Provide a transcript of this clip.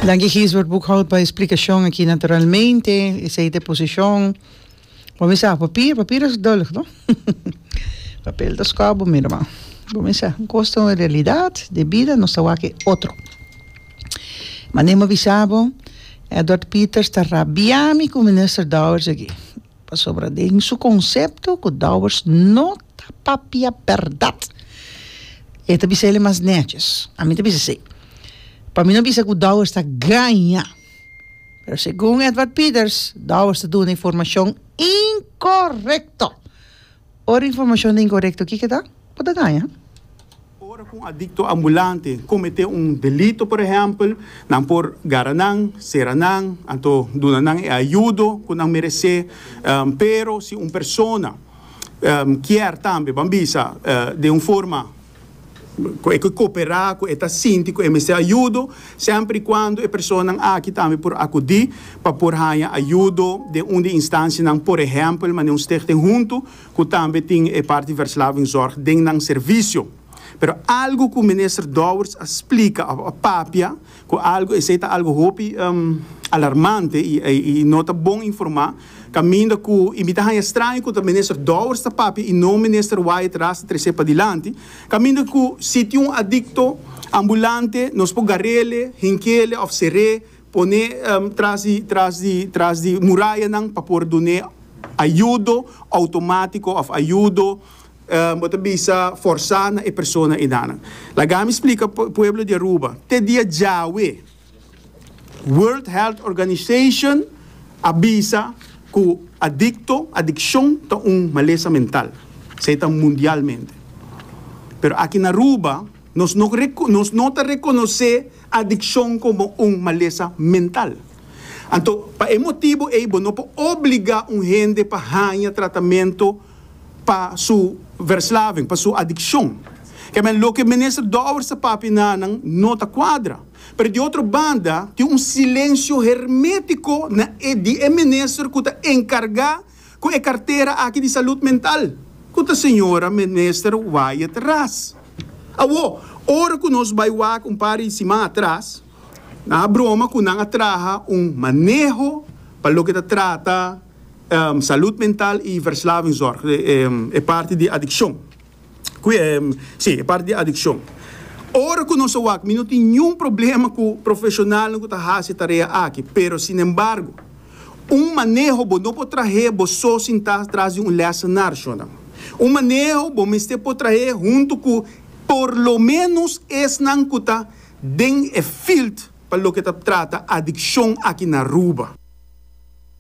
Danki Gisbert Boekhoudt pa e splikashon aki. Naturalmente esei ta e posishon bo misa papir, papir es dùllig no? Papel ta skòp bo mira man. Bo misa kos ta un realidat di bida nos ta wak e otro. Mane mi a bisa bo Edward Peters ta rabia mi ku Minister Dowers aki. Pasobra den su konsepto ku Dowers no ta papia bèrdat, e ta bisa el e mas nètjes. Ami ta bisa así. Pa mi no bisa ku Dowers ta gaña. Pero segun Edward Peters, Dowers ta duna informashon inkorekto. Ora informashon ta inkorekto, kiko ta? Bo ta gaña. Ora ku un adikto ambulante kometé un delito, por ehèmpel, nan por gara nan, sera nan, anto duna nan e ayudo ku nan meresé. Pero si un persona kier tambe, ban bisa den un forma. ku e ke koperá, ku e ta sinti ku e mester ayudo, semper i kuando e personanan aki tambe por akudí pa por haña ayudo den un di e instansianan, por ehèmpel manera un stichting huntu ku tambe tin e parti Verslavingzorg den nan servisio. Pero algu ku Minister Dowers a splika òf a papia Cu algo esey ta algo hopi alarmante y no ta bon informa, caminda cu y mi ta haya straño cu ta Minister Dowers ta papia y no Minister Wyatt Ras ta trece padilanti, caminda cu si tin un adicto ambulante nos por garele, hinkele of cere, pone tras di tras di tras di murayanan pa por dune ayudo automatico of ayudo Bo ta bisa forsá na e persona enanan. Lagami splika pueblo di Aruba. Te dia djawe World Health Organization a bisa ku adikto, adikshon, ta un malesa mental. Esei ta mundialmente. Pero aki na Aruba nos no nos no ta rekonosé adikshon komo un malesa mental. Anto pa e motibu ei bo no por obliga un hende pa haña tratamentu. pa su verslaving, pa su adikshon. Kèmen loke Minister Dower sa papia nanan no ta kuadra. Pero di otro banda tin un silensio hermétiko na e di e minister ku ta enkargá ku e kartera aki di Salud Mental, ku ta señora Minister Wyatt Ras. Awo, ora ku nos bai wak un par di siman atras, nan a broma ku nan a traha un maneho pa loke ta trata, Salud mental y verslavingzorg, e parti di adiccion. Si, e parti di adiccion. Ora cu nos a wak, mi no tin niun problema cu profesionalnan cu ta haci e tarea aki, pero sinembargo, un maneho bo no por trahe bo so sinta tras di un lessenar, shonnan. Un maneho bo mester por trahe hunto cu por lo menos esnan cu ta den e field pa loke ta trata adiccion aki na Aruba.